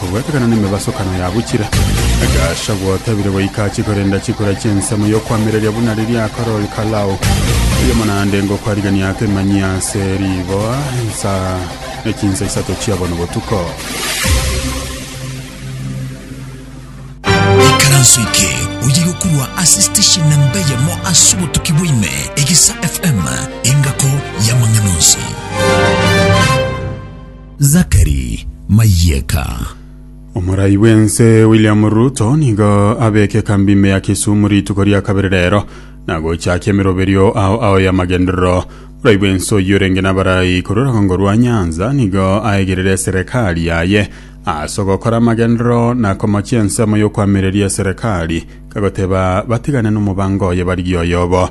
Korwa ekeganano emebasokano yabo chire egasha gwatabire goika achie korenda chikura chi'ensemo y'okoamereria buna riria akarori Kalao, oyomo naende ngokwarigia akemanyi ase riboa insa ne chinsa isato chia bono botuko. Ikaranso eke oye gokurwa ase station na mbeyemo ase obotuki bwaime Egesa FM, engako y'amang'ana onsi. Zachary Mayeka. Omorai bw'ense William Ruto nigo abeke ekambi ime ya Kisumu rituko ria kabere rero na gochakia emeroberio ao ao y'amagenderero. Omorai bw'ense oyio orenge n'abarai korwa orogongo rwa Nyanza nigo aegerere eserekari yaye ase ogokora amagenderero na komochia ensemo y'okoamereria eserekari kagoteba batigane n'omobango oye barigie oyobo.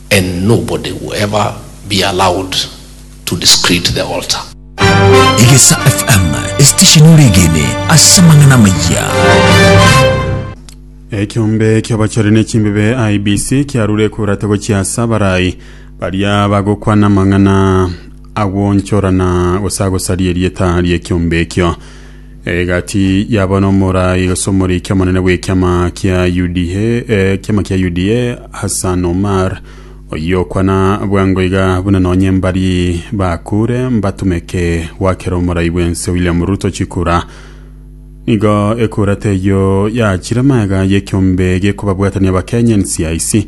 And nobody will ever be allowed to desecrate the altar. Egesa FM, esitesheni oregene ase amang'ana amayia. Ekiombe ki'abachore nechimbebe IBC kiarure kurata gochiasa abarai baria bagokwana amang'ana agwonchorana gose agosaria erieta ri'ekiombe ekio Egati yaba n'omorai gose omoriki omonene bw'ekiama kia UDA, ekiama kia UDA Hassan Omar oyokwana bwango iga buna nonye mbari bakure mbatumeke gwakera omorai bw'ense William Ruto chikura. Nigo ekura teyio yachire magega y'ekiombe gekobabwatania Abakenya NCIC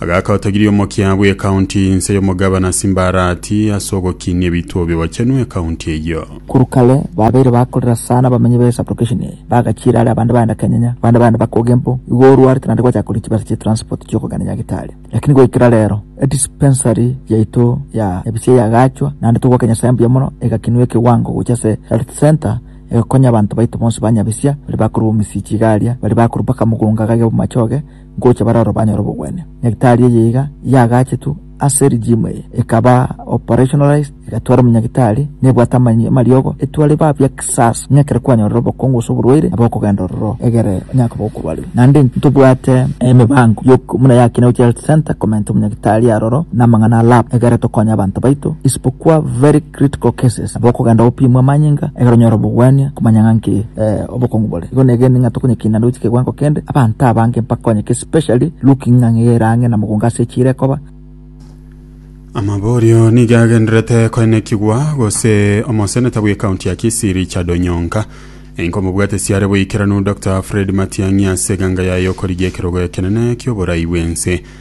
Agaaka otogirie omokia bw'ekaunti inse y'omogabana Simbarati ase ogokinia ebituo bigochenwa ekaunti eyio. Korwa kare babeire bakorera sana abamenyi be sublocation eye, bagachiera are abande bagenda Kenyanya, abande bagenda bakoga empo, igo orwarete naende gwachaka koria chibesa chia transport chiokogenda Nyagetari. Lakini goikera rero, edispensary yaito ya Ebisia yagaachwa naende togoaka Nyasae mbuya mono, egakinwa ekewango gocha ase health centre egokonya abanto baito bonsi ba Nyabisia baria bakorwa Omisiichi iga aria, baria bakorwa mpaka Mugunga gaiga bomachoge, ngocha bare aro banyore obogwenia. Nyagitari eye iga yagaachetwe ase regime eye, ekaba operationalized, egatwara omonyagetari, na ebwate amany amariogo, etware ba bia kisasa, ng'a ekero kwanyorire obokongo gose oborwaire, nabo okogenda ororo egere onye akoba okorwarire. Naende intwe tobwate emebango y'ok buna ya Kinau Child Centre komenta omonyagetari aroro na amang'ana a lab egere tokonye abanto baito, isipokwa very. Critical Cases, nabo okogenda gopimwa amanyinga ekero onyore obogwania komanya ng'a nki obokongu bore. Igo negenire ng'a tokonyekina naende gochia kegoango kende abanto abange mbakonyeke especially looking ng'a ng'ai ere ang'e na mogongo ase echiira ekoba. Amaborio nigo agenderete koenekigwa gose omoseneta bw'ekaunti ya Kisii Richard Onyonka enkomobwate siare boikeranu Dokta Fred Matiang'i ase eganga yaye okorigia ekerogo ekenene ki'oborai bw'ense.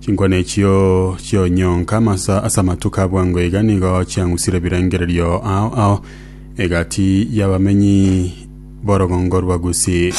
Chinkwana echio chi'onyonka amasa ase amatuko a bwango iga nigo chiang'usire ebirengererio ao ao egati y'abamenyi b'orogongo rwa Gusi.